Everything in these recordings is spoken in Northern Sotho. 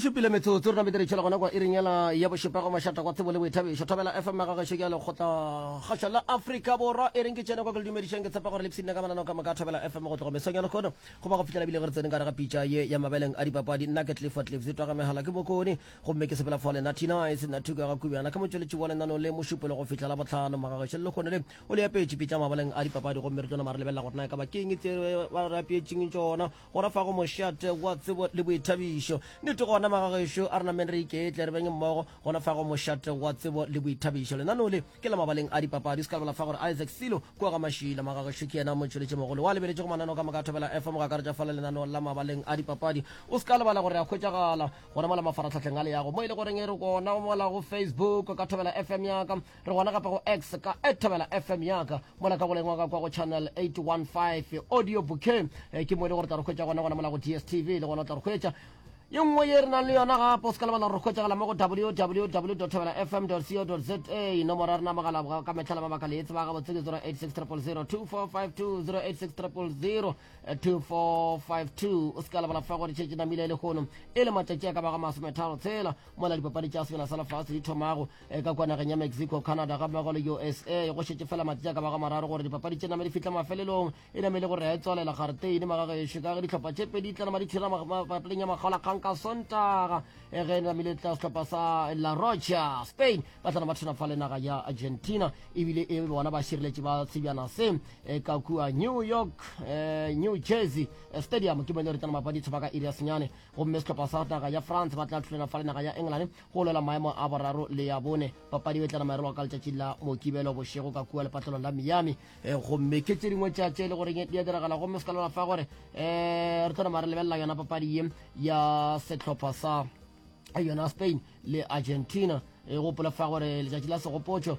šupile metsotso rena bediretšhela gona kwa iringela ya bošupego mašata kwa tsebo le boithabišo thobela fm ya gagešo ke ya lekgotlakgašo la afrika borwa e reng ke tšene kwa ke le dumedišeng ke tshepa gore lepsine ka manano ka moka thobela fm go tloga mesong ya lekgono go ba go fitlhela bile ge re tsene ka re ga pitša ye ya mabeleng a dipapadi nna ke tlifo tlifse twaga megala ke bokone gomme ke sepela fole natinice nathuko ya ga kubjana ke motšweletši wa lenano le mošupelo go fitlhela botlhano magagešo le lekgono le o le apetše pitša mabeleng a dipapadi gomme re tlo nama re lebelela gore na e ka bakeng tse ba re apetšeng tsona Go re fa go mošate wa tsebo le boithabišo. Nnete gona, magagešo, a re nameng re iketle, re beng mmogo go na fa go mošate wa tsebo le boithabišo. Lenaneo le ke la mabaleng a dipapadi. O se ka lebala fa go re Isaac Silo kua ga Mašila, magagešo, ke yena motšweletšimogolo wa lebeletšego mananeo ka moka a Thobela FM, go akaretša fa le lenaneo la mabaleng a dipapadi. O se ka lebala gore re a hwetšagala gona mola mafaratlhahleng a leago, mo e le goreng re gona mola go Facebook ka Thobela FM ya ka. re gona gape go x ka e thobela fm yaka mola ka goleng wa ka kwa go channel 815 audio bouquet eh, ke mo e le gore tla re hwetša gona gona mola go dstv le gona o tla re hwetša ye nngwe ye re nang le yona gape o se ka lebala gore hwetšagala mo go www thobela fm co za nomoro ya rena mogala ka metlha la mabaka le e tseba gabotse ke 086 000 2452 086 000 2452 o se ka lebala fa gore tšhetše namile e legono e le matšatši a ka bago masometharo tshela mola dipapadi tša sebjana sa lefase di thomago E ka kwa nageng ya Mexico, Canada gammogo le USA go šetše fela matši a ka bago mararo gore dipapadi tše name di fihle mafelelong, e name e le go retswalela gareteine magagešo ka ge dihlopha tše pedi di tlana madithira papading ya makgolakgang ka Sontaga e ge e namile tla sehlopha sa La Roja Spain ba tlana ba thena fa le naga ya Argentina ebile e bona ba šireletše ba sebjana se e ka kua New York eh, New Jersey eh, Stadium ke bone re tlana mapadi tshoba ka iri ya senyane gomme sehlopha sa naga ya France ba tla thulana fa le naga ya England Go lwela maemo a boraro le a bone, papadi e tlana maerelwa ka letšatši la Mokibelo bošego ka kua lepatlelong la Miami. Eh, gomme ke tše dingwe tša tše e le goreng di a diragala gomme se ka lwela fa gore um re tlo nama re lebelela yona papadi ye ya sehlopha sa yona Spain le Argentina e gopola fa gore letšatši la segopotšo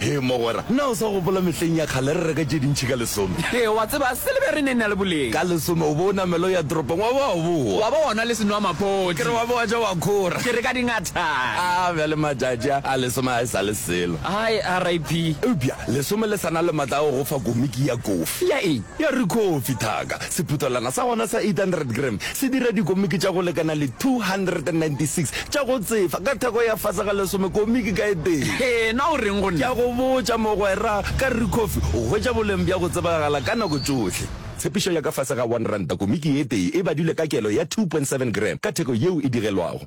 He mogwera, na o sa gopola mehleng ya kgale re reka tše dintšhi ka lesome? He, wa tseba, silebere e ne e na le boleng. Ka lesome o bo o namela o ya toropong wa ba wa bowa. Wa ba wa nwa le senwamaphodi. Ke re wa ba wa ja wa khora. Ke re ka dingatana. A, bjale matšatši a, a lesome ga e sa le selo. Hai, RIP. Eupša lesome le sa na le matla a go go fa komiki ya kofi. Ya eng? Ya rikhofi, thaka. Sephuthelwana sa gona sa 800 gram se dira dikomiki tša go lekana le 296 tša go tsefa ka theko ya fase ga lesome komiki ka e tee. Hee, na o reng go nna? Ke a go botša, mogwera, ka re Kofi o hwetša boleng bja go tsebagala ka nako tšohle. Tshepišo ya ka fase ga one ranta komiki ye tee e badilwe ka kelo ya 2.7 gram ka theko yeo e digelwago.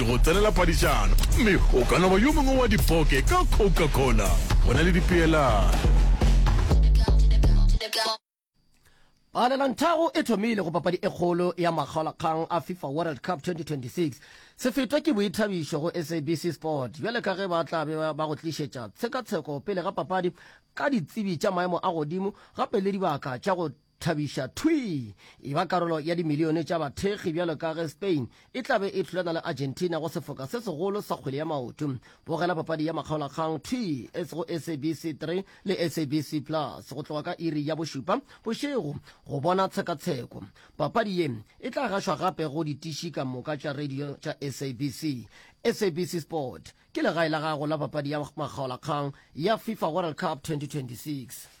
ke go tsenela padišano gomme o ka no ba yo mongwe wa dipoke ka Coca-Cola go na le dipeelano. Palelantago e thomile go papadi e kgolo ya makgaolakgang a FIFA World Cup 2026. Se fetwa ke boithabišo go SABC Sport bjale ka ge ba tla be ba go tlišetša tshekatsheko pele ga papadi ka ditsebi tša maemo a godimo gape le dibaka tša go Thabiša, Thwi! Eba karolo ya dimilione tša bathekgi bjalo ka ge Spain e tla be e hlolana le Argentina go sefoka se segolo sa kgwele ya maoto. Bogela papadi ya makgaolakgang thwi go SABC 3 le SABC Plus go tloga ka iri ya bošupa bošego go bona tshekatsheko. Papadi ye e tla gašwa gape go ditiši ka moka tša radio tša SABC. SABC Sport ke legae la gago la papadi ya makgaolakgang ya FIFA World Cup 2026.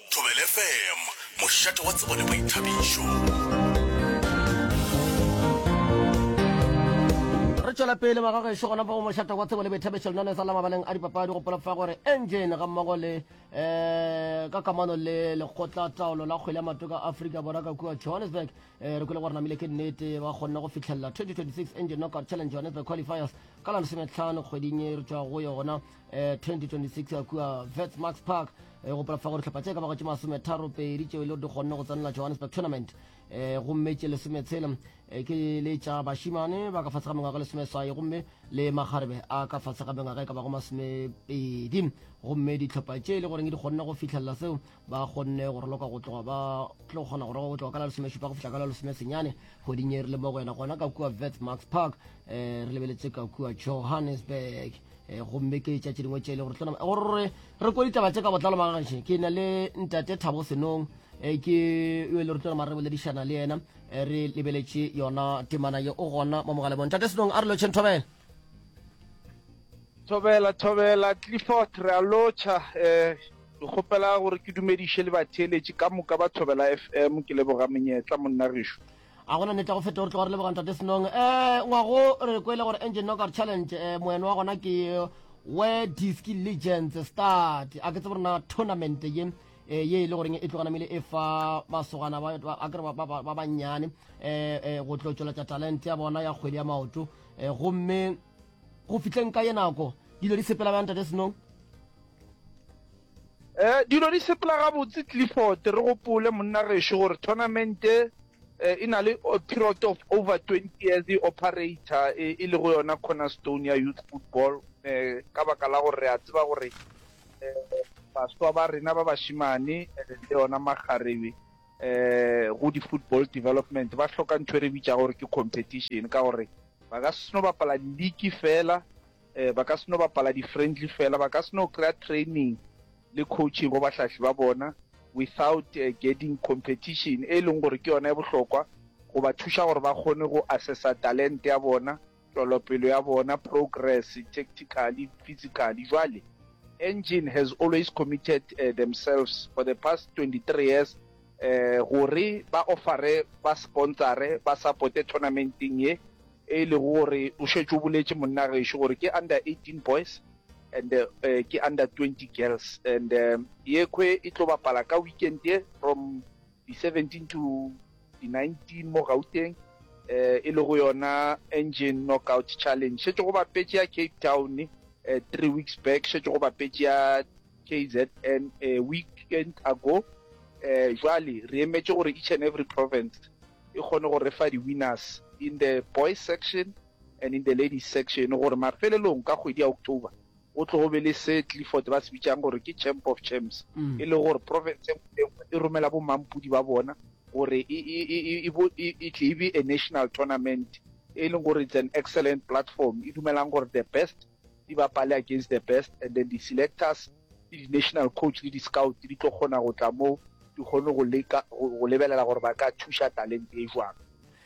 Thobela FM, mošate wa tsebo le boithabišo. Re tšwela pele ba ga gešo gona fa go mošate wa tsebo le boithabišo lena le sa la mabaleng a dipapadi go polofa gore engine ga mmogo le um ka kamano le lekgotla taolo la kgwele ya matoka a aforika borwa ka kua johannesburg um re kwele gore namile ke nnete ba kgonne go fitlhelela 2026 engine knockout challenge johannesburg qualifiers ka la lesometlhano kgweding e re tswa go yona eh, 2026 a kua vetsmax park eh, go polafa gore tlhopha tše ka bago tše masometharo pedi tšeo e le gore di kgonne go tsenela johannesburg tournament eh, gomme tše lesometshele eh, ke le tša bašimane ba ka fase ga mengwaga e lesomeswai gomme le makgarebe a ka fase ga mengwaga e ka bago masomepedi gomme ditlhopha tše e le goreng di kgonne go fihlelela seo ba kgonne go roloka go tloga ba tlo kgona go roloka go tloga ka la lesomešupa go fihla ka la lesomesenyane kgweding e rile mo go yena gona ka kua vets max park um re lebeletse ka kua johannesburg um gomme ke tša tše dingwe tše e le gore tlona gore re ko ditaba tse ka botlalo magaše ke na le ntate thabo senong um ke yo e le gore tlona re boledišana le yena re lebeletše yona temana ye o gona mo mogalebong ntate senong a re lotšheng thobela thobela thobela clifford re a lotšha um Ke kgopela gore ke dumediše le batheeletši ka moka ba Thobela FM. Ke leboga monyetla, monna gešo. A gona nete ya go feta gore tloga re leboga Ntate Senong. Eh, ngwago re kwele gore Engine Knockout Challenge eh, moeno wa gona ke Where Disc Legends Start. A ke tsebe rena tournament ye eh, ye e le goreng e tloga namile e fa masogana ba ba- a ke re ba- ba ba- ba bannyane eh, eh, go tlo tšweletša talente ya bona ya kgwedi ya maoto eh, gomme go fihleng ka ye nako dilo di sepela bjang tate senong Eh, dilo di sepela gabotse clifford re gopole monna gešo gore tournamente eh, e na le eh, period of over 20 years e operator eh, e le go yona cornerstone ya youth football eh, ka baka la gore re a tseba gore eh, baswa ba rena ba bashimane eh, le yona magarebe um go di-football development ba hloka ntho e re bitša gore ke competition ka gore ba ka seno bapala league fela um ba ka seno bapala di-friendly fela ba ka seno kry-a training le coaching go bahlahli ba bona without uh, getting competition e leng gore ke yona e bohlokwa go ba thuša gore ba kgone go assessa talente ya bona Tšwelopelo ya bona, progress, tactically, physically, jwale, Engine has always committed themselves for the past 23 years gore ba offere ba sponsore, ba supporte tournamenteng ye, e lego gore o šetše o boletše monna gešo gore ke under 18 boys and ke under 20 girls and yekhwe e tlo bapala ka weekend ye from di 17 to di 19 mo Gauteng eh, e le go yona engine knockout challenge šetše go bapetše ya cape town eh, three weeks back šetše go bapetše ya kzn eh, weekend ago eh, jwale re emetše gore each and every province e kgone go re fa di-winners in the boys section and in the ladies section gore mafelelong ka kgwedi ya october Go tlogo be le se Clifford ba se bitšang gore ke Champ of Champs, e lego gore province e nngwe le e nngwe e romela bo-mmampudi ba bona gore e, e, e, e, e, bo, e, e tle e be a national tournament, e leng gore it's an excellent platform, e dumelang gore the best di bapale against the best, and then di-selectors le di-national coach le di-scout di tlo kgona go tla moo di kgone go leka, go, go lebelela gore ba ka thuša talente e jwang.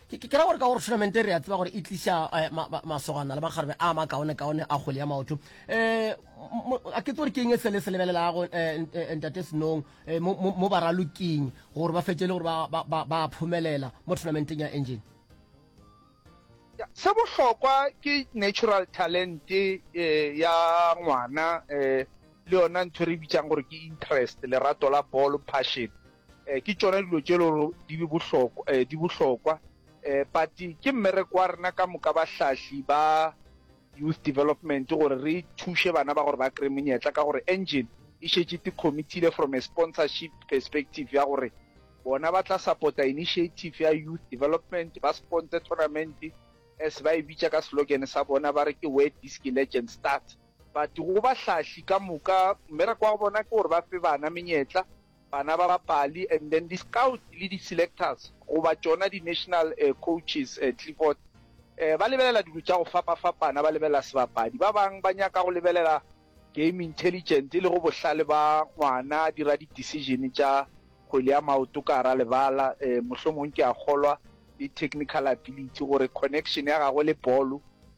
ke ke ra gore ka gore tournament re ya tseba gore e tliša eh, masogana le makgarebe a makaone kaone a kgwele ya maoto eh, um a ke tsore ke eng e sele se lebelelago eh, ntate senong mo ba raloking gore ba fetse le gore ba phomelela mo tournamenteng ya engine se bohlokwa ke natural talent ya ngwana le yona ntho re bitsang gore ke interest lerato la ball passion Eh, ke tšona dilo tše lego di be bohlokwa eh, di bohlokwa eh, but ke mmereko wa rena ka moka bahlahli ba youth development gore re thuše bana ba gore ba kry monyetla ka gore engine e šetše te committile from a sponsorship perspective ya gore bona ba tla supporta initiative ya youth development ba sponsor tournament as ba e bitša ka slogan sa bona ba re ke where disc legend start but go bahlahli ka moka mmereko wa bona ke gore ba fe bana menyetla bana ba bapali and then di scouts le di selectors goba tšona di national coaches Clifford ba lebelela dilo tša go fapa-fapana, ba lebelela sebapadi, ba bang ba nyaka go lebelela game intelligent e lego bohlale ba ngwana a dira di decision tša kgwele ya maoto ka gara lebala, mohlomong ke a kgolwa le technical ability gore connection ya gagwe le bolo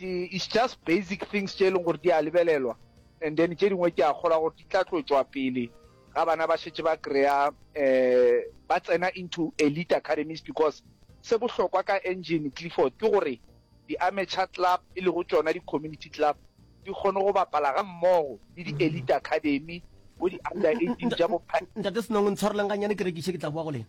It's just basic things tše e leng gore di a lebelelwa and then tše dingwe ke a kgolwa gore di tla tlotšwa pele ga bana ba šetse ba kry-a um eh, ba tsena into elite academies because se bohlokwa ka engine clifford ke gore di-amateur club e lego tsona di-community club di kgone go bapala ga mmogo le di-elite mm-hmm. academy bo di-under eighteen ja bophate senong ntshwareleng ganyane ke rekiše ke tla boa go lena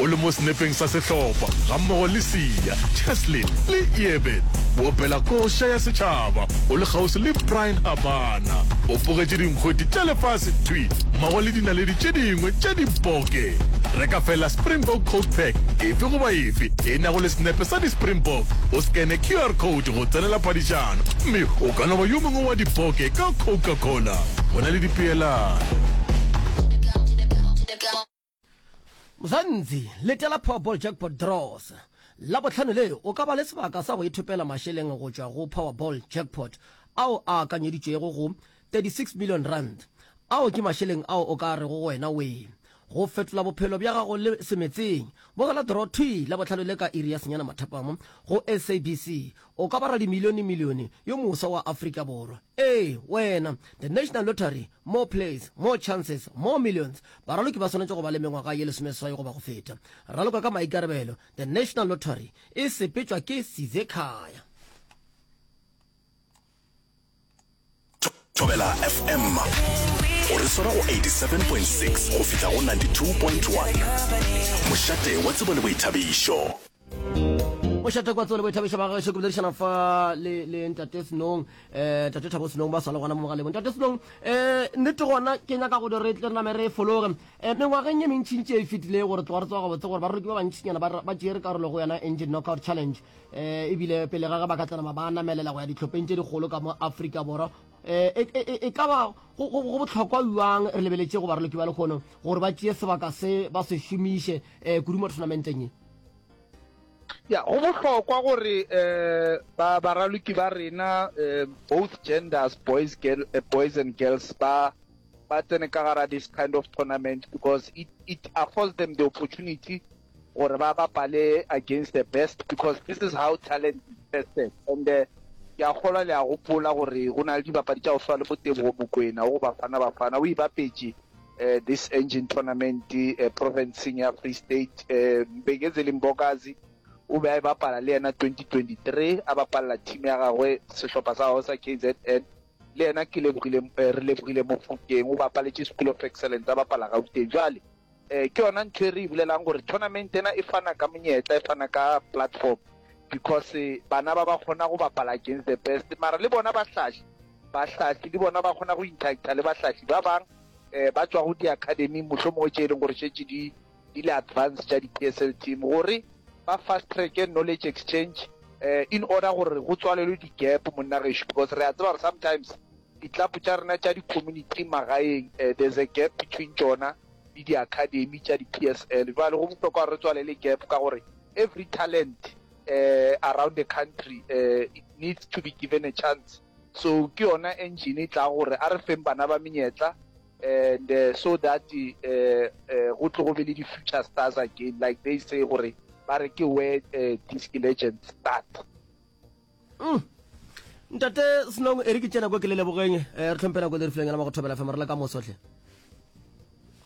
o le mo senepeng sa sehlopha gammogo le Siya, Cheslin le Eben. O opela koša ya setšhaba, o le kgauswi le Brian Habana. O bogetše dinkgweti tša lefase thwi mmogo le dinaledi tše dingwe tša diboke. Reka feela Springbok Coke Pack efe goba efe e nago le senepe sa di-Springbok, o skene QR code go tsenela phadišano, mme o ka no ba yo mongwe wa diboke ka Coca-Cola. Go na le dipeelano. Mzanzi, letela Powerball Jackpot Draws. Labohlano le, o ka ba le sebaka sa go ithopela mašeleng go tšwa go Powerball Jackpot ao a akanyeditšwego go 36 million rand. Ao ke mašeleng ao o ka rego go wena wee go fetola bophelo bja gago le semetseng. Bogela draw thwi Labohlano le ka iri ya senyana mathapama go SABC O ka ba radimilionemilione yo moswa wa Afrika Borwa. Ee, wena. The National Lottery, More Plays, More Chances, More Millions. Baraloki ba swanetše go ba le mengwaga ye lesomeswai goba go feta. Raloka ka maikarabelo, The National Lottery e sepetšwa ke Sizekhaya. thobela fm o re swara go 87.6 go fihla go 92.1 mošate wa tsebo le boithabišo mošate kwa tsebo le boithabišo ba gaešo ke boledišana fa le le ntate senong um tate thabo senong ba swale gona mo mogalebong tate senong um nnete gona ke nyaka go di re tle re name re e fologe um mengwageng e mentšhintši e e fetileng gore tloga re tsoga gabotse gore baroki ba bantšhinyana ba tšere karolo go yona engine knockout challenge um ebile pele ga ge ba ka tsanama ba namelela go ya ditlhopheng tše dikgolo ka mo afrika borwa Eh, e, e, e ka ba go botlhokwa jang re lebeletše go baraloki ba lekgono gore ba tšeye sebaka se ba se šomiše um eh, kudu mo tournamenteng e ya go bohlokwa gore um ba baraloki ba rena um both genders boys girl uh, boys and girls ba ba tsene ka gara this kind of tournament because it, it affords them the opportunity gore ba bapale against the best because this is how talent is tested and uh, ke a kgolwa le a gopola gore go na le dibapadi tša go swa le bo tebogo mokwena o go bafana bafana o ibapetše uh, this engine tournament uh, provinceng ya free state uh, beketse le mbokazi o be a e bapala le yena 2023 a bapalela team ya gagwe sehlopha sa gagwe sa kzn le yena ke lebogile re lebogile mofokeng o bapaletše school of excellence a bapala gauteng jale Eh, ke yona ntho e re e bulelang gore tournament ena e fana ka monyetla e fana ka platform because eh, bana ba ba kgona go bapala against the best mara le bona bahlahli bahlahli le bona ba kgona go interacta le bahlahli ba bang um ba tswa go di-academy motlho mongwe tse e leng gore shetse di di le advance tša di-p s l team gore ba fast track knowledge exchange um in order gore go tswalelwe di-gap monna gešo because re a tseba gore sometimes ditlapo tša rena tša di-community magaeng um there's a gap between tsona le di academy tša di PSL. Jwale go bohlokwa gore re tswalele gap ka gore every talent uh, around the country uh, it needs to be given a chance so ke yona engine e tla gore a re feng bana ba menyetla and uh, so that uh, uh, go tlo go be le di-future stars again like they say gore ba re ke where uh, these legends start Mm. Ntate Snong, eri ke tšena kwa ke le lebogeng. Eh, re tlhompela kwa lerifileng la magothobela fm, re le ka moso hle.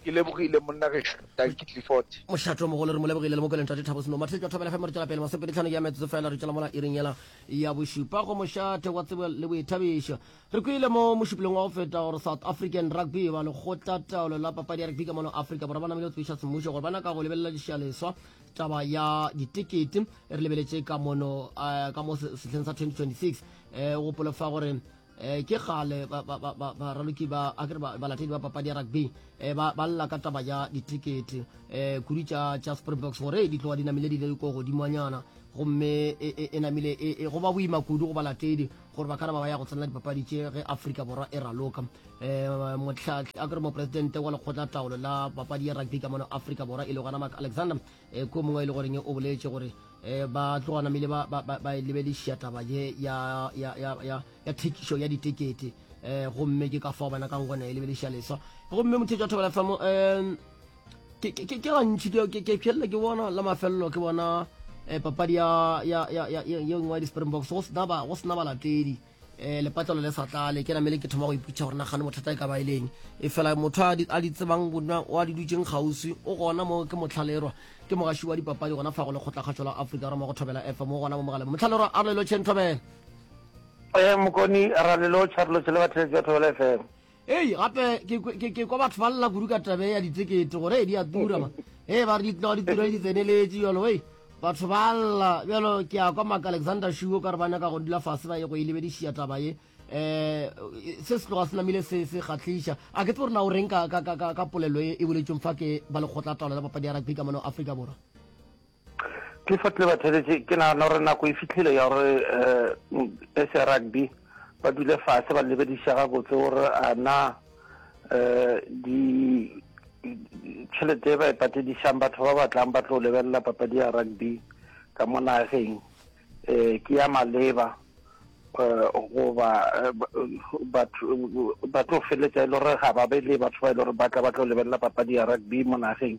Ke lebogile monna gešo, Dankie Clifford. Mošato mogolo re mo lebogile le mokwele ntate Thabo Snong. Mathetšo a thobela fm re tšwela pele masopedi tlhano ke ya metsotso fela re tšwela mola iring yela ya bošupa go mošate wa tsebo le boithabišo. Re kwile mo mošupolong wa go feta gore South African Rugby ba lekgotla taolo la papadi ya rugby ka mono Afrika Borwa ba namile go tsebiša semmušo gore ba naka go lebelela dišaleswa taba ya ditekete re lebeletše ka mono uh, ka mo sehleng sa 2026 um gopolo fa gore um ke gale baraloki ba akere balatedi ba papadi ya rugby um ba lla ka taba ya ditekete um kudu tša tša springboks gore di tloga di namile di le ko godimonyana gomme e, e, e namile e, go ba boima kudu go balatedi gore ba kana ba ba ya go tsenela dipapadi tše ge afrika borwa e raloka um eh, motlhatlhi a kere moporesidente wa lekgotla taolo la papadi ya rugby ka mono afrika borwa e le gona mark alexander um eh, ko mongwe e le goreng o boletse gore um ba tloganamile ba lebelešia taba ye ya thekišo ya ditekete um gomme ke ka fao bana kang gone e lebelešia leswa gomme mothetso wa thobela famo um ke gantši ke pšhelela ke bona la mafelelo ke bona um papadi ye nngwe ya di-springboks go sena balatedi um lepatlelo le sa tlale ke namele ke thoma go iputšha gore nagane mothata e ka ba e leng e fela motho a di tsebang wa di dutseng kgauswi o gona mo ke motlhalerwa ke mogaši wa dipapadi gona fa go le kgotlakgatšo la aforika roma go thobela efa mo gona mo mogaleng motlhalerwa a lelo chen thobela um mokoni ralelo charlotte le batheletsi ba thobela fm Hei, gape ke, ke, ke kwa batho ba lla kudu ka tabe ya ditekete gore e di a tura ma e ba re di tlago di tura le di tseneletše jalo hei batho ba lla bjalo ke ya kwa maka alexander shuo ka re ba nyaka go dula fase ba ye go e lebedišia taba ye um se se tloga se namile se se kgatlhiša a ke tse gore na o reng ka polelo e e boletšong fa ke ba lekgotla taolo la papadi ya rugby ka mono afrika borwa clifford le batheletše ke nagana gore nako e fitlhile ya gore um eh, sa rugby ba dule fase ba lebediša gabotse gore a na um di tšhelete e ba e patedišang batho ba batlang ba tlo lebelela papadi ya rugby ka mo nageng um ke ya maleba um goba eh, batho ba tlo feletsa e le gore ga ba be le batho ba e le gore ba tla ba tlo lebelela papadi ya rugby mo nageng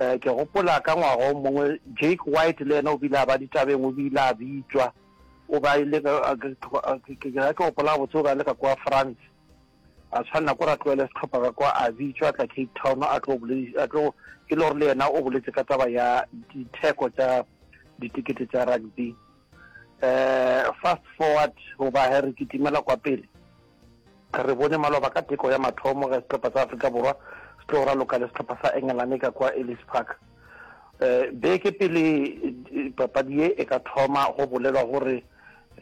um ke gopola ka ngwaga o mongwe jake white le ena o bile a ba ditabeng o bile a bitšwa o ba ile ke ke gopola botse o ba le ka kwa france a tshwanela ko ra tloele setlhopha ka kwa a bitšwa a tla cape town a tlo a tlo e le gore le yena o boletse ka taba ya ditheko tsa ditekete tsa rugby um fast forward goba he re kitimela kwa pele Re bone maloba ka teko ya mathomo ge sehlopha sa Afrika Borwa se tlo raloka le sehlopha sa Engelane ka kwa Ellis Park. Eh, beke pele eh, papadi ye e ka thoma go bolelwa gore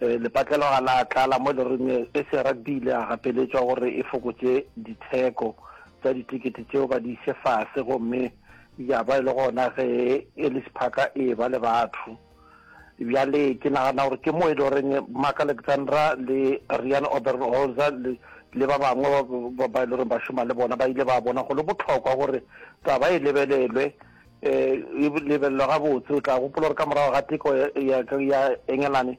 eh, lepatlelo ga la tlala mo e le reng e se rugby ile a gapeletšwa gore e fokotše ditheko tsa ditikete tšeo ba di ise fase gomme ya ba e le gona ge Ellis Park e ba le batho bjale ke nagana gore ke mo e le goreng mark alexandra le rian oberholzer le, le ba bangwe ba e le goreng ba šoma le bona ba ile ba bona go le botlhokwa gore taba e lebelelwe um e lebelelwa gabotse o tla gopola gore ka morago ga teko ya engelane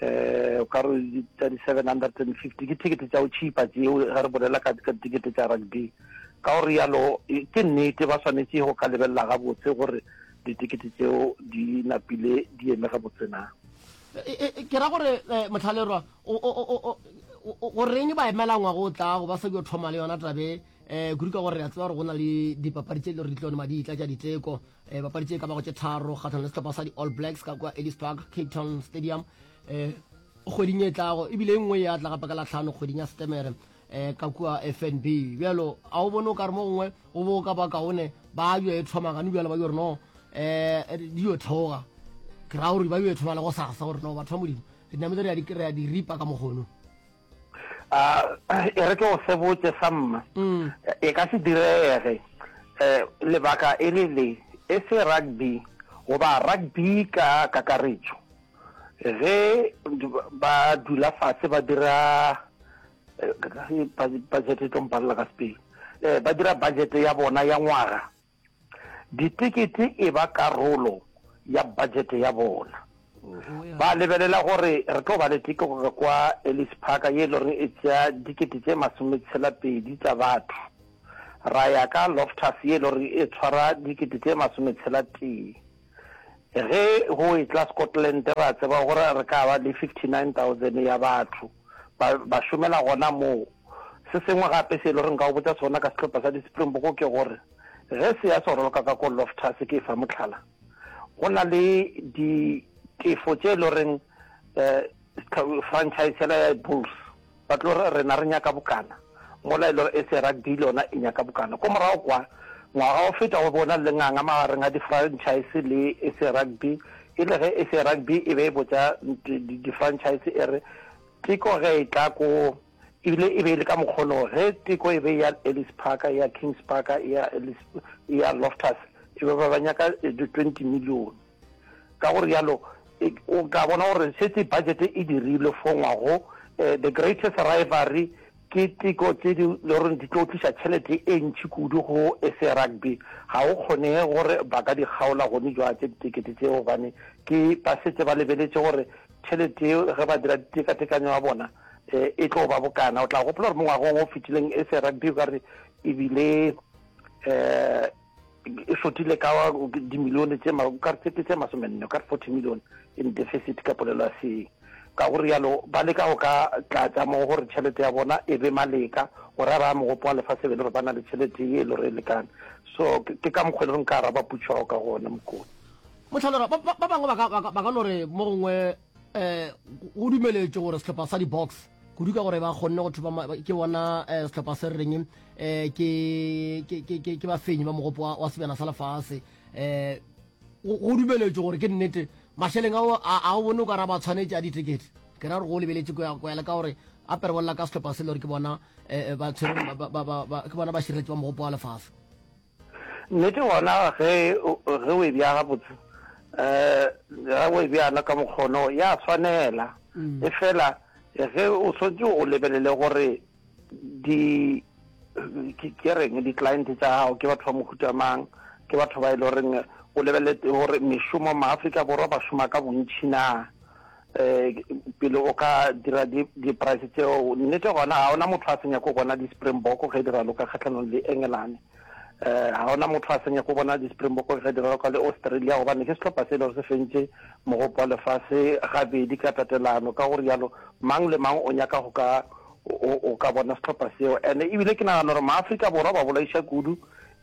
eh ka re tsa di 750 ke ticket tsa o cheaper tseo ga re bolela ka ka ticket tsa rugby ka gore yalo e, ke nnete ba swanetse go ka lebelela ga botse gore ditikete tseo di napile di eme ga botse na e, e, ke ra gore eh, motlhalerwa goreng ba emela ngwago o tlago ba sa dio thoma le yona tabe um kudu ka gore re a tseba gore go na le dipapadi tse e le gore di tlo ne maditla tša diteko e bapadi tše ka bago tše tharo kgatlhano le setlhopha sa di-all blacks ka kwa ellis park cape town stadium um kgweding e tlago ebile e nngwe ya tla gapa ka latlhano kgweding ya setemere um ka kua fnb bjalo a o bone o ka re mo gongwe o bo ka ba kaone ba yo e thoma gane bjalo ba yo re no um di yo theoga ke ra gore ba yo e thoma le go sasa gore no batho ba modimo re nametse re ya di ripa ka mogono a e re ke go se botse sa mma mm. e ka se direge um lebaka e le le e se rugby goba rugby ka kakaretšo ge ba dula fatshe ba dira eh, budget e tlo mpalela ka sepele um ba dira budget ya bona ya ngwaga ditekete e ba karolo ya budget ya bona ba lebelela gore re tlo ba le tikego kwa Ellis Park ye e le gore e tsea dikete tse masome tshela pedi tsa batho ra ya ka Loftus ye e le gore e tshwara dikete tse masome tshela tee Ge go etla Scotland ra tseba gore re ka ba le 59,000 ya batho ba, ba šomela gona moo. Se sengwe gape se e le gore nka o botsa sona ka sehlopha sa di-Springbok ke gore ge se ya se roloka ka ko Loftus ke e fa mohlala, go na le ditefo tše e le goreng eh, Franchise yela ya Bulls ba tlo re rena re nyaka bokana mola e le gore SA Rugby le yona e nyaka bokana. Ko morago kwa, ngwaga o feta go be go na le lenganga magareng ga di-franchise le SA Rugby e le ge SA Rugby e be e botša di-franchise e re teko ge e tla ko ebile e be e le ka mokgono ge teko e be ya Ellis Park ya Kings Park ya Ellis ya Loftus e be ba ba nyaka di 20 millione ka go rialo e, o ka bona gore setse budget e dirilwe fo ngwago eh, the greatest rivalry ke tiko tse di le gore di tlo tlisa tšhelete e ntšhi kudu go sa rugby ga o kgonege gore ba ka di kgaola gone jwa tse ditekete tseo gobane ke ba setse ba lebeletse gore tšhelete eo ge ba dira ditekatekanyo ya bona um e tlo ba bokana o tla gopola gore mo ngwagong o fetileng sa rugby ka re ebile um e fotile ka dimilione tse ke tse masomenne ka 40 million in deficit ka polelo ya seeng ka gore yalo ba leka go ka tlatsa mo gore tšhelete ya bona e be maleka gore a raya mogopo wa lefatshe e be le gore ba na le tšhelete ye e le gore e lekane so ke ka mokgwa e le gore nka araba putšo gago ka gone mokone motlhalora ba bangwe ba ka no re mo gongwe um go dumeletše gore setlhopha sa di-box kudu ka gore ba kgonne go thopa ke bona um setlhopha se re reng um ke bafenyi ba mogopo wa sebjana sa lefase um go dumeletšwe gore ke nnete mašeleng ao a o bone o ka ra ba tshwanetse a ditekete ke ra gore go lebeletše koyale ka gore a perebolela ka setlhopha se le gore ke bona um ke bona ba širetše ba mogopo wa lefase Nnete gona ge ge o e bea gabotse, um ge o e bjana ka mokgono ya swanela, mm. e fela ge o swetse o lebelele gore di ke reng di-client tsa gago ke batho ba mohuta mang ke batho ba e le goreng o lebelele gore mešomo maaforika borwa ba šoma ka bontšhi na um pele o ka dira di-price tseo nnete gona ga ona motho a senya ko bona di-springbok ge di raloka kgatlhanong le engelane um ga ona motho a senya ko bona di-springbok ge di raloka le australia gobane ke setlhopha se e le gore se fentse mogopo wa lefase gabedi ka tatelano ka gore yalo mang le mang o nyaka go ka o ka bona setlhopha seo and ebile ke nagana gore maaforika borwa ba bolaiša kudu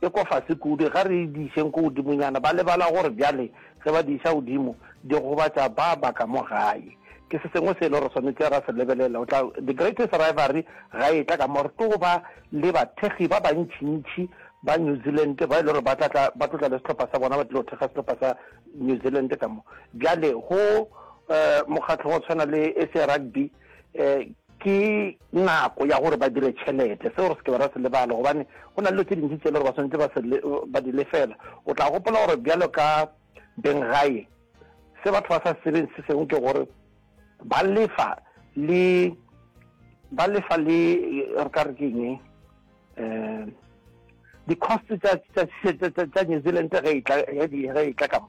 e kwa fase kudu, ga re e dišeng ko godimonyana. Ba lebala gore bjale ge ba di iša godimo, di gobatša ba ba ka mo gae. Ke se sengwe se e lego re swanetše ra se lebelela. O tla, The Greatest Rivalry ga e tla ka mo re tlo ba le bathekgi ba bantšintši ba New Zealand ba e lego gore ba tla tla, ba tlo tla le sehlopha sa bona, ba tlilo thekga sehlopha sa New Zealand ka mo. Bjale go, uh, mokgatlo wa go tshwana le SA Rugby, um ke nako ya gore ba dire tšhelete seo re se ke ra se lebala gobane go na le dilo tse dintši tse e le gore ba tshwanetse ba se ba di lefela o tla gopola gore bjalo ka beng gae se batho ba sa sebeng se sengwe ke gore ba lefa le ba lefa le re ka re keng um di-cost tsa new zealand ge e tla kamo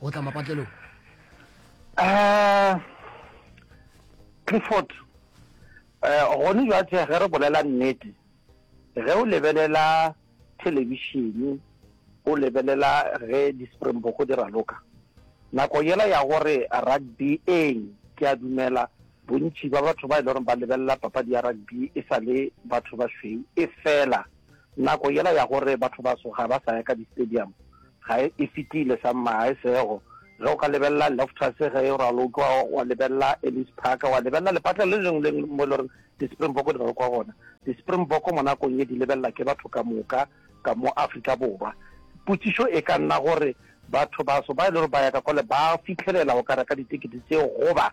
go tla mapatlelong um clifford um gone jwatse ge re bolela nnete ge o lebelela thelebishene o lebelela ge di-springboko di raloka nako yela ya gore rugby eng ke a dumela bontši ba batho ba e le gore ba lebelela papadi ya rugby e sa le batho ba šweu e fela Nako yela ya gore bathobaso ga ba sa ya ka di-stadium ga e e fetile. Sa mma ga e sego. Ge o ka lebelela Loftus ge e ralo o tloga wa lebelela Ellis Park, wa lebelela lepatla le lengwe le lengwe mo e le goreng di-Springbok di ralokwa gona. Di-Springbok mo nakong ye di lebelela ke batho ka moka ka mo Afrika Borwa. Potšišo e ka nna gore bathobaso ba e le gore ba ya ka kwale ba fitlhelela go ka reka ditekete tseo goba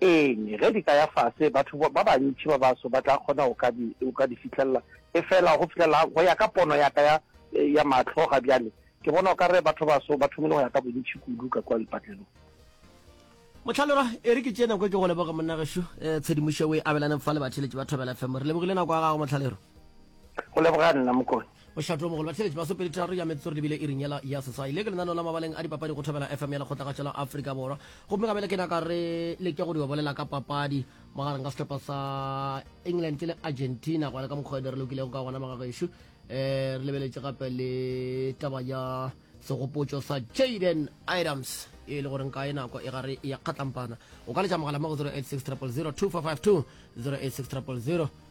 Eng, ge di ka ya fase, batho ba bantši ba baso ba tla kgona go ka di, go ka di fihlelela. Efela go fihlelela, go ya ka pono ya ka ya, ya mahlo ga bjale, ke bona o ka re batho baso ba thomile go ya ka bontši kudu ka kua lepatlelong. Mohlaloga, e re ke tšee nako e ke go leboge, monna gešo. Tshedimošo o e abelane fa le batheeletši ba Thobela FM. Re lebogile nako ya gago, Mohlaloga. go leboga nna mokone bošato mogolo batlheletši masopedi tharo ya metsotso re lebile iring yela ya seswai le ke lenaneo la mabaleng a dipapadi go thobela fm ya lekgotlagatša la afrika borwa gomme ka bele ke naka re leke go di obolela ka papadi magareng ka sehlopha sa england le argentina gona ka mokgwa ene re lokilego ka gona magagešo um eh, re lebeletše gape le taba ya segopotšo sa jaden items e le goreng kae nako e gare ya kgatlampana o ka letša mogala mo go 086 000 2452 086 000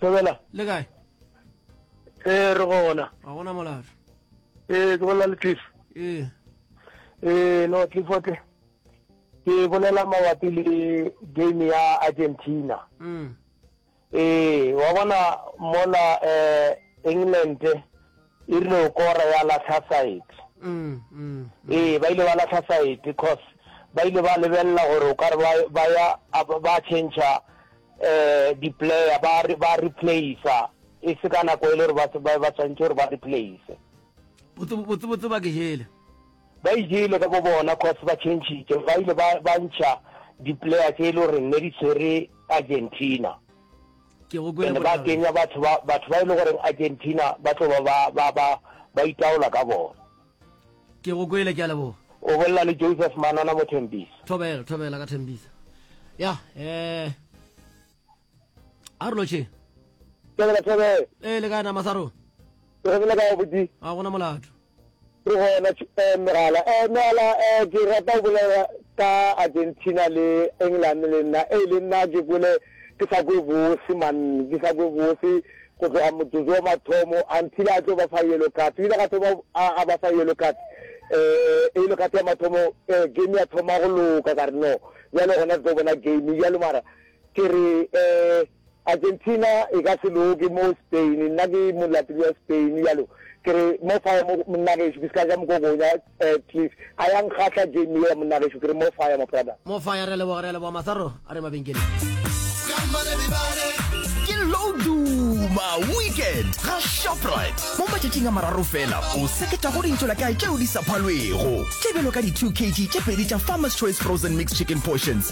thobela le kae ee re gona ga gona molaro ee ke bolela le cliff ee ee no cliffote ke bolela mabapi le game ya argentina mm. Ee, wa bona mola eh, England e rile o kora ya lahla side. Mm, mm, Ee, ba ile ba lahla side cause ba ile ba lebelela gore o ka re ba- ba ya a ba- ba changea eh di-player ba re- ba replacea e se ka nako e le gore ba se- ba ba tshwanetse gore ba replace botse botse botse ba ke jele ba ijele ka bo bona cause ba changitše ba ile ba ba ntšha di-player tse e le goreng ne di tshwere Argentina. Ke go kwele bohlabela. Ba kenya batho ba batho ba ile e gore Argentina ba tlo ba ba ba ba itaola ka bona. Ke go kwele ke a leboga. O bolla le Joseph Manana mo Thembisa. Thobela thobela ka Thembisa. Ya eh Arloche. Thobela thobela. Eh le kana masaro. Ke go le ka botsi. A gona molato. Ke gona tše eh mogala eh mogala eh ke rata go bolela ka Argentina le England le nna eh le nna ke kwele ke sa kwe bose man ke sa kwe bose go tloga motsotso wa mathomo until a tlo ba fa yellow card o ile ga thoma a a ba fa yellow card eh yellow card ya mathomo eh game ya thoma go loka ka re no bjale gona re tlo bona game bjalo mara ke re eh Argentina e ka se loke mo Spain, nna ke molatedi wa Spain yalo ke re mo fire mo monna gešo ke se ka ja mokokonya eh, please a ya nkgahla game yela monna gešo ke re mo fire mo brother. Mo fire re a leboga re a leboga masaro a re mabenkeleng. ke loduma weekend ga shoprite mo matšatšing a mararo fela o seketa go dintšola kae tšeo di sa phalwego tebelo ka di-2 kg tše pedi tša farmers choice frozen mixed chicken portions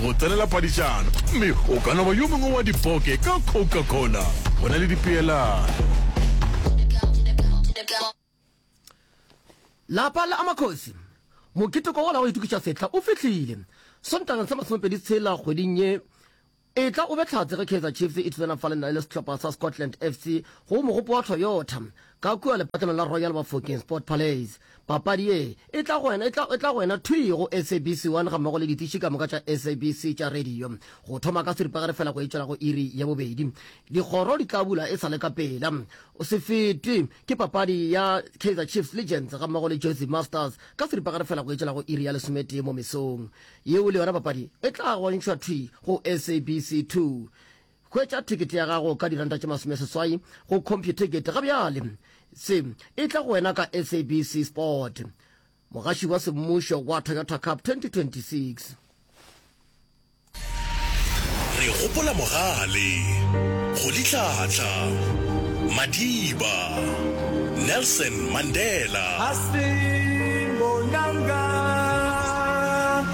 go tsenela padišano, gomme o ka no ba yo mongwe wa dipoke ka Coca-Cola. Go na le dipeelano. Lapa la Amakgosi. Mokete kwa la go itukiša sehla o fihlile. Sontaga sa masomepedi tshela kgweding ye e tla o be tlhatse ge Kaizer Chiefs e thusana fa le nna le sehlopha sa Scotland FC go mogopo wa Toyota ka kua lepatlanong la Royal Bafokeng Sport Palace. Papadi ye e tla go wena, e tla, e tla go wena thwii go SABC 1 gammogo le ditiši ka moka tša SABC tša radio. Go thoma ka seripagare feela go etšwela go iri ya bobedi. Dikgoro di tla bula e sa le ka pela. O se fetwe ke papadi ya Kaizer Chiefs Legends gammogo le Jozi Masters ka seripagare feela go etšwela go iri ya lesometee mo mesong. Yeo le yona papadi e tla go ntšhwa thwii go SABC 2. Hwetša thekete ya gago ka diranta tše masome seswai go CompuTicket ga bjale. Se e tla go wena ka SABC Sport, mogaši wa semmušo wa Toyota Cup 2026. Re gopola mogale, go litlhatla, madiba, Nelson Mandela. Hasbin Bonanga.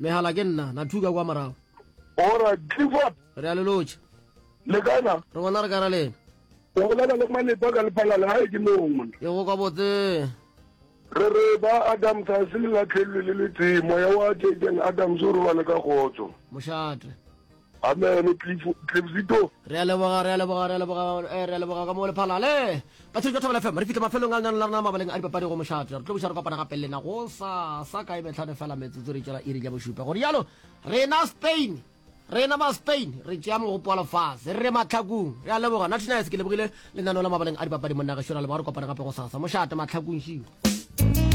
Mehala ke nna, na thuka kwa morago. Ora, Clifford. Re a lelotša. Le kana? Re gona re kara lena. O bolela le Malepa ka lephalale, ga e ke lona. Ke go kwa botse. Re re ba Adams ga se le latlhelwe le le tee, moya wa Jaden Adams o robale ka kgotso. Mošate. Amen Cliff Cliffzito. Re a leboga, re a leboga, re a leboga, eh, re a leboga ka mo le phalale. Ba tshirika Thobela FM, re fitla mafelong a lenang la rena mabaleng a dipapadi go mošate. Re tlo buša re kopana gape lena go sa sa kae metlhano fela metsotso re tšela iri ja bošupa. Gore yalo, rena Spain, rena ba Spain, re tšea mogopo wa lefase, re re matlhakung. Re a leboga, Natty Nice ke lebogile lenaneo la mabaleng a dipapadi monna ge šora leboga re kopana gape go sasa. Mošate matlhakung šio.